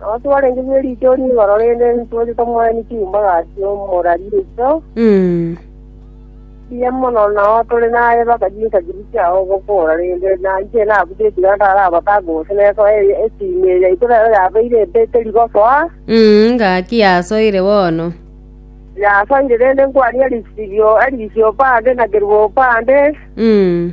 Nabo twarenge bwe riichori igoro rende ntweete tomoeni chiumba gati omorari oito, Mm. mbuya mono nao tore naye mpaka chinsa chiria chia ogokora rende na inche nabuche ekiagera ntarabata gose nesoa e- esimi eye yaito nero yabeire empeteri gosoa, Mm, ngaki yasoire bono. yasoire rende nkwania risibio erisio bande na kerubo bande, Mm.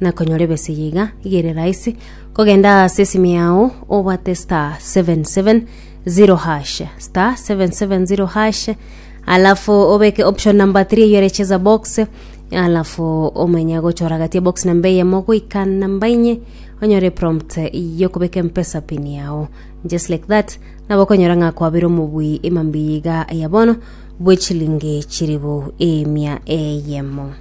na konyora ebesegi iga iga ere rahisi kogenda ase esimu yao obwate star 770 hash star 770 hash alafu obeke option number 3 eyo ere cheza box alafu omenye gochora gati ya box namba eyemo goika namba inye onyore prompt yo kobeka empesa pin yao just like that nabo okonyora ng'a kwabire omobui emambi iga ya bono bwechilingi chiribu emia eyemo